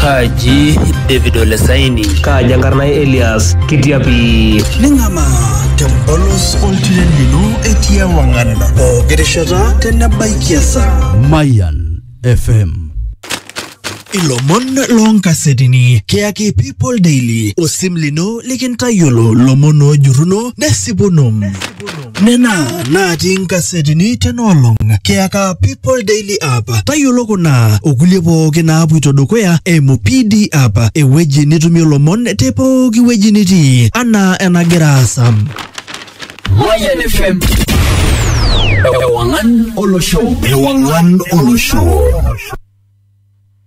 Kaji David Olesaini. Kaaji enkarna ai Elias Kitiapi. Ning'amaa tempolos oltiren lino etii ewang'an pooki rishata tenebaiki esaa. Mayan FM. Ilomon loonkasetini kiyaki People Daily osim lino likintayiolo lomon oojurruno nesipuno. nena natii inkasetini tena olong kiyaka People Daily App. Tayiolo kuna okulie pooki naapuito dukuya eimu PD App, ewueji nitumie lomon te pooki wueji nitii anaa enagira aasa. Mayan FM. Ewangan Olosho. Ewangan Olosho.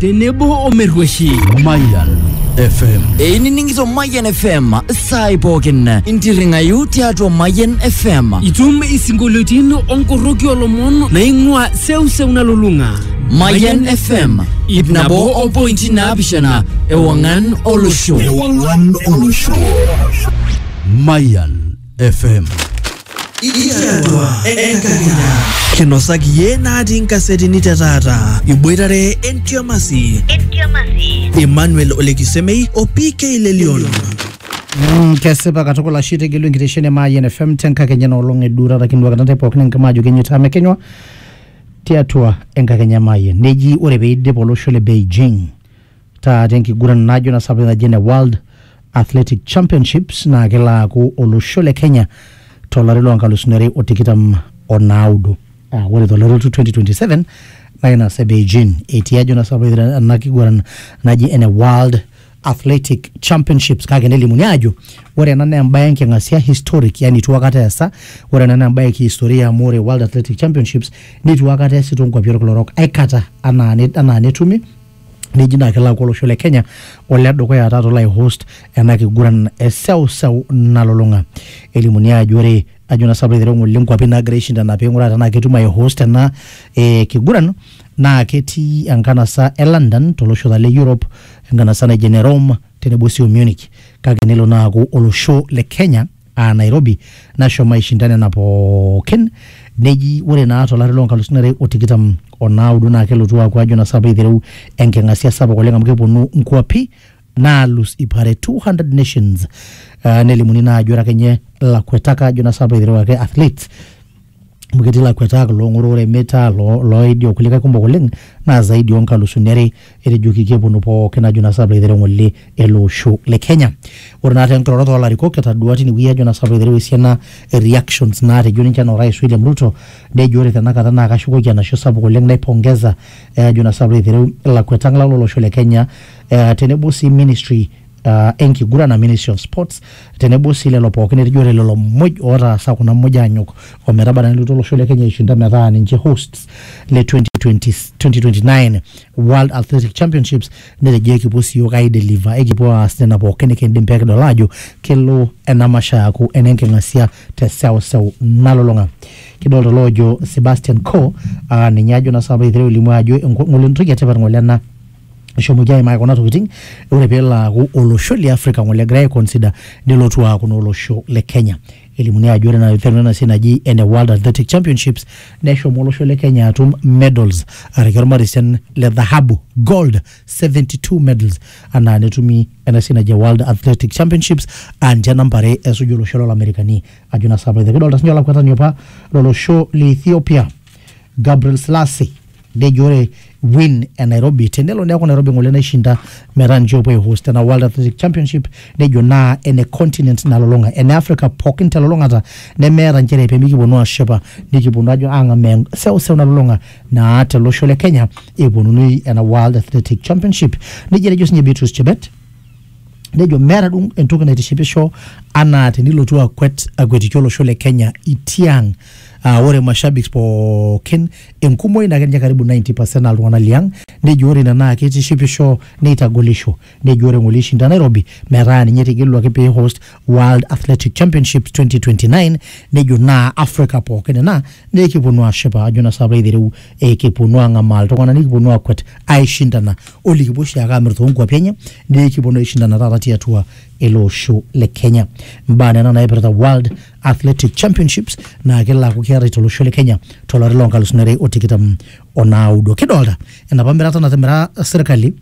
tenebo omerrueshi Mayan FM. einining'ito Mayian FM saai pookin intirring'ayu tiatua Mayian FM itum isinkolioitin onkorroki olomon naing'ua seuseu nalulung'a Mayian FM ip nabo o pointi naapishana ewang'an olosho Ewang'an olosho. Mayan FM. Ikiatua enkakenya. Kinosaki iyie natii nkasetini te taata. Iboitare entiamasi. Emmanuel Olekisemei o PK Lelion. Mm, kesipa katukul ashe itegelu enkitesheni e Mayian FM tenkakenya enoolong eduurata kinuakita ntae pookin enkima ajo kenyita amu ekenywa tiatua enkakenya e Mayian. Neji ore peidip olosho le Beijing taata enkiguran najo na sapuk naji ene World Athletic Championships naa kelo aaku olosho le Kenya tolari loo nkalusuni are o tikitam o naudo. Aa ore tolari olotu 2027 naa ina sa Beijing etii ajo na sapuk ena kiguran naji ene World Athletic Championships kake nelimuni aajo ore ena naa embae enking'asia historic yani itu akata eesa. Ore ena naa embae e kihistoria amu ore World Athletic Championships nitu akata eesi too nkuapi olkila orok aikata anaa anaa netumi neji naa kelo aaku olosho le Kenya ole dukuya taata olo aihost ena kiguran e seuseu nalulung'a. Elimuni aajo ore ajo naa sinanu piilo aitereu ng'ole nkuapi naagira aishindana piing'uraa tenaa ketum aihost ena eh kiguran naa ketii enkanasa e London tolosho taa le Europe, enkanasa naji ene Rome tenebo sii o Munich kake nelo naa aaku olosho le Kenya aa Nairobi nashomo aishinda nena pookin neji ore naa tolari loo nkalusuni are o tikitam o naudo naa kelotu aaku ajo naa sapa eitereu enking'asia sapuk oleng amu keponu nkuapi naalus ip are 200 nations uh, nelimuni naa ajo ore akenye lakuetak ajo naa sapa eitereu ake athletes amu ketii ilakuetak loong'oro ore metaa loo- looidi okulikae kumok oleng naa zaidi onkalusuni are etejoki keponu pookin ajo naa saplo aitereu ng'ole ele osho le kenya ore naa tenkiroroto oolarikok etadua tinewueji ajo naa saplo aitereu esiana e reactions naatejo ninche enaa orais William Ruto nejo ore tenakata naa kashukoki enashe sapuk oleng naipongeza eh ajo naa saplo aitereu ilakuetak lang lolosho le kenya eh tenebo sii ministry uh, enkiguran a Ministry of Sports tenebo sii lelo pookin etijore lelo muj ootaasa kuna muj aanyok ometaba naa nelotu olosho le Kenya aishinda metaa ninche hosts le 2020, 2029 World Athletic Championships netejo ekipuo sii yiok aideliver ekipuo aas nena pookin nikindim pee kidol aajo kelo ena masho aaku enenking'asia te seuseu nalulung'a kidolta oloojo Sebastian Coe uh, ninye ajo naa sapa egira alimu ajo enko- ng'ole entoki etipat ng'ole ena eshomoki aimaki kuna tokitin ore peelo aaku olosho le Africa ng'ole egirai aiconsider nelotu aaku naa olosho le Kenya. Elimuni ajo ore ena iteru ena siai naji ene World Athletic Championships neshomo olosho le Kenya atum medals araki ormarisen le dhahabu gold 72 medals anaa netumi ena siai naji World Athletic Championships aa ninche namba are esuju olosho lolamerikani ajo naa saapa. Kidolta siinye olakwetani opa lolosho le Ethiopia Gabriel Selassie nejo ore win e Nairobi tenelo neeku Nairobi ng'ole naishinda metaa ninche opuo aihost ena World Athletic Championship nejo naa ene continent nalulung'a ene Africa pookin telulung'ata nemeeta nchere pemikiponu ashipa nikiponu ajo ang'amaa seuseu nalulung'a naa telosho le Kenya eponunui ena World Athletic Championship nejo etejo sinye Beatrice Chebet nejo meeta duo entoki naitishipisho anaa tenilotu akwet akwetiki olosho le Kenya itiang uh, ore mashabiki pookin Enkumoi naa keninye karibu 90 percent naa iltung'ana liang nejo ore ina naa keitishipisho neitagolisho. Nejo ore ng'ole eishinda Nairobi metaa ninye etegeluaki pee eihost World Athletic Championships 2029 nejo naa Africa pooki ina naa ekiponu aashipa ajo naa saapa aitereu kiponu ang'amaa iltung'ana nikiponu aakwet aaishindana o likipuo oshiake aamir too nkuapi enye naa ekiponu aishindana taata tiatua ele osho le Kenya. Imbaa nena naipirta World Athletic Championships naa kelo aaku keetae tolosho le Kenya tolari loo nkalusuni are o tikitam o naudo. Kidolta enapa mirata natimira sirkali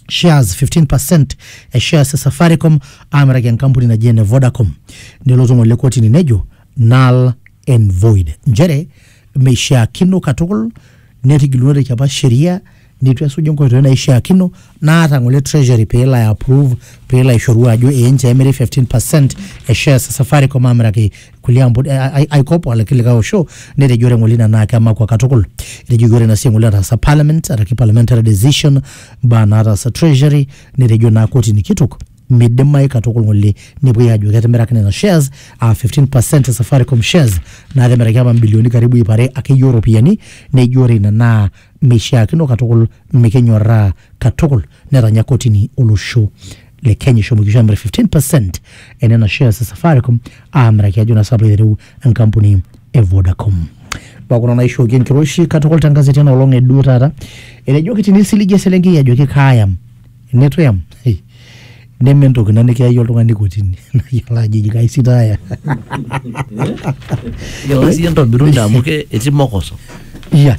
shares 15% e shares e Safaricom aamiraki enkampuni naji ene Vodacom. Nelotu ng'ole kotini nejo null and void nchere meishiakino katukul netigilunoteki apa sheria nitu esuju nkoitoi naishiakino naata ngole treasury pelo ai approve pelo aishoru ajo ee nchoo emiri 15% e shares e Safaricom amiraki kulie ampun eh, ai- aikop alaki likae osho netejo ore ngole ina naa kemakwa katukul etejoki ore ina siai ngole nataasa parliament araki parliamentary decision mbaa nataasa treasury netejo naa kotini kitok midimayu katukul ngole nepuoi ajo ketimiraki nena shares aa 15% e Safaricom shares naa kemiraki apa mbilioni karibu iip are akeyie oropiyiani nejo ore ina naa meishiakino katukul mikinyorraa katukul netanya kotini olosho le Kenya eshomo kisho amir 15% enena shares e Safaricom aamiraki ajo naa sapu aitereu enkampuni e Vodacom. Mbaa kuna naishooki enkiroshi katukul te nkazeti ena olong e duo taata. Etejoki tinisiligi eselenkei ajoki kaayam neitu eyam hey, neme entoki ina nikiyayie oltung'ani kotini nayiolo ajo eji kaisitaaya. Yiolo siyie entobiru ina amu ke- etii mokoso. Yeah.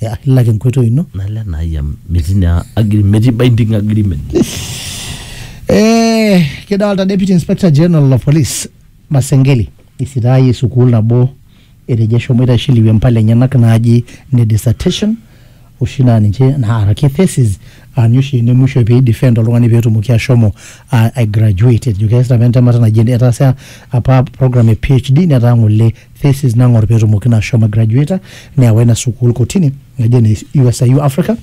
ya ilak enkoitoi ino nalo enai amu metii naa agreement metii binding agreement Eh, kidolta deputy inspector general of police masengeli isitaayie sukuul nabo etejo eshomoita aishiliwie impala enyenak naaji ne dissertation oshi naa ninche naaraki thesis aaninye oshi ene musho pei defend oltung'ani petumoki ashomo uh, ai graduate etejo keesita apa entemata naji etaasa apa program e PHD netaa ng'ole thesis nang'or peetumoki naa ashomo graduata neewa ina sukuul kotini naji ene USIU Africa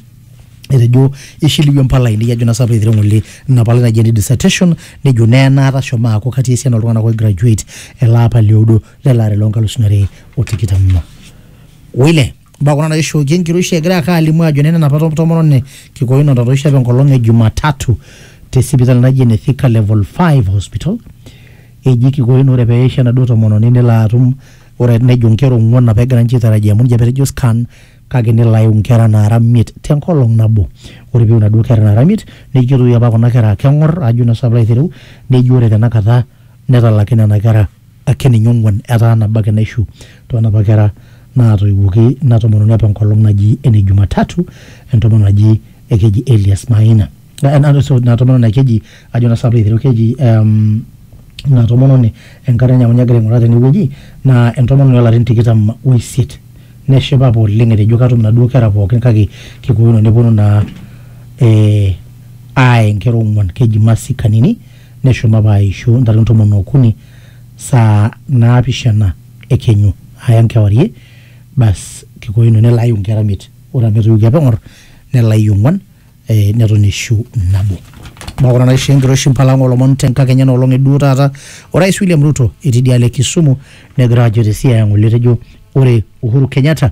etejo ishiliwie impala ainei ajo naa sapa eiteru ng'ole ina palai naji ene dissertation nejo naa enaata ashomo aaku katii esiana oltung'anak oi graduate ele apa lioudo lele ari loonkalusuni are o tikitam oile. Mbaa kuna naishooki enkiroshi egira ake alimu ajo nena napa to- tomononi Kikoyo natotoishe apa enkolong e Jumatatu te sipitali naji ene Thika Level 5 Hospital. Eji Kikoyo naa ore peisho enaduo tomononi nelo atum ore nejo nkera ong'uan apa egira ninche aitarajia amu ninche apa etejo scan kake nelo aiu nkera naara miet tenkolong nabo. Ore piu naduo kera naara miet neji ketoiwuo apa kuna kera keng'or ajo naa sinanu piilo aitereu neji ore tenakata Netalaki nena kera ake ninye ong'uan etaa nabo ake naishu too napa kera naatoiwuoki ina tomononi apa enkolong naji ene Jumatatu entomononi naji ekeji Elias Maina. Ina tomononi naa keji ajo naa sapa aiteru keji ina tomononi enkarna enye amu ninye agira aing'uraa tenewueji naa entomononi oolarin tikitam oisiet. Neshipa apa oleng etejo katum inaduo kera pookin kake kikoino nepwonu naa aaya inkera ong'uan. Keji Mercy Kanini Neshom apa aaishu ntare ntomon o okuni saa naapishana e kenyu, aaya nkewarie, bas kiko ino nelo aiu nkera miet, ore amu etoiwuoki apa eng'or, nelo aiu ong'uan, ee neton eishu nabo. Mbaa kuna naishoo enkiroshi mpala ang' oolomon te nkakenya ena olong' e duo taata. Orais William Ruto etii idialo e Kisumu negira ajo te Siaya ng'ole etejo ore Uhuru Kenyatta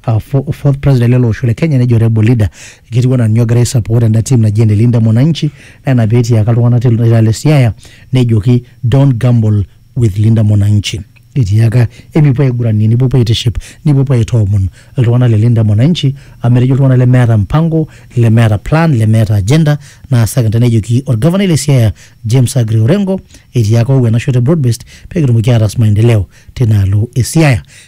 uh, fo- fourth president lele osho le Kenya nejo Rebel leader ketiu anaa ninye ogira ai support enda team naji ene Linda Mwananchi naa ina pee etiaka iltung'anak te ilo le Siaya nejoki don't gamble with Linda Mwananchi etiaka emipuo aiguranie nipuopuo aitiship nipuopuo aitoomon iltung'anak le Linda Mwananchi amu etejo iltung'anak lemeeta mpango lemeeta plan lemeeta agenda naa second nejoki orgavanai le Siaya James Aggrey Orengo etiaka owuo enashoto e broad based pee kitumoki aataas maendeleo tinaalo e Siaya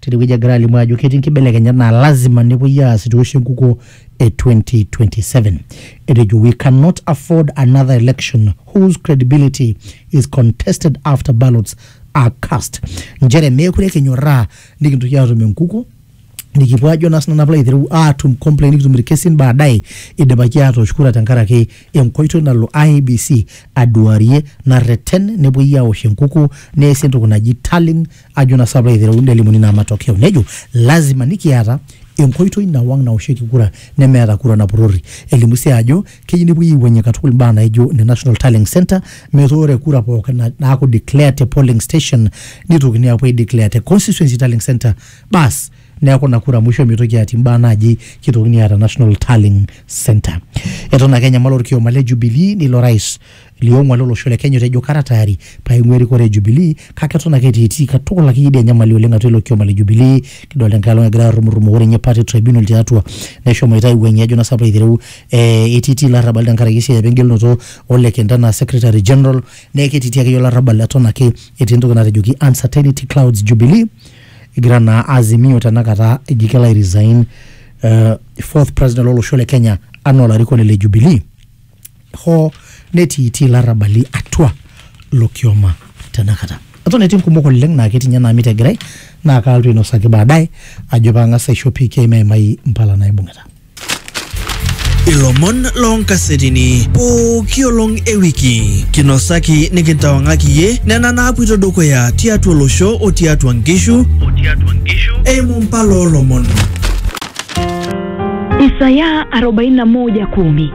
tinewueji egira alimu ajo ketii nkibelekenyat naa lazima nepuoi aas itu eoshi enkukuo e 2027. Etejo we cannot afford another election whose credibility is contested after ballots are cast. Nchere meekure kinyorraa nikintoki aatum enkukuo nikipuo ajo naa sinanu aplo aitereu aatum complain nikitum irkesin baadaye idipaki atoosh kura tenkaraki enkoitoi nalo IEBC aduarie narreten nepuoi aosh enkukuo neesi entoki naji tallying Ajo na sapla eitereu nelimuni naa matokeo nejo lasima nikiata enkoitoi nawang naoshieki kura nemeeta kura napurori. Elimu sii ajo keyieu nepuoi aiwuangie katukul imbaa naijo ne National Tallying Centre metaa ore kura pookin naaku declared te polling station neitokini apuo ai declare te constituency tallying centre baas neaku ina kura musho meitoki atii imbaa naaji keitokini aata National Tallying Centre. Eton ake enyamal olkioma le Jubilee neilo rais Liong'ua lo losho le Kenya otejo kara tayari paing'ua erikore e Jubilee kake eton ake etiitii katukul akeyie idia nyamali oleng atua ilo kioma le Jubilee. Kidolta enkae olong egira arrumurrumo ore ninye party tribunal tiatua neshomoita aiwuang'ie ajo naa sapaa aitereu eh etiitii ilarrabali tenkaraki esiai apa engelunoto o lekenta enaa secretary general neeku ketiitii akeyie olarrabal eton ake etii entoki natejoki uncertainty clouds Jubilee egira naa Azimio tena kata eji kelo ai resign eh fourth president lo losho le Kenya anaa olarikoni le Jubilee. hoo netiitii ilarrabali atua ilo kioma tenakata. Eton etii nkumok oleng naa ketii ninye naamit egirai naa kaalotu ainosaki baadaye ajo paang'as aisho PK meimai mpala naibung'ita. Ilomon loo nkasetini pooki olong e wiki kinosaki nikintawang'aki iyie nena naapuoito dukuya tiatua olosho o tiatua nkishu eimu mpala oo lomon. Isaya 41:10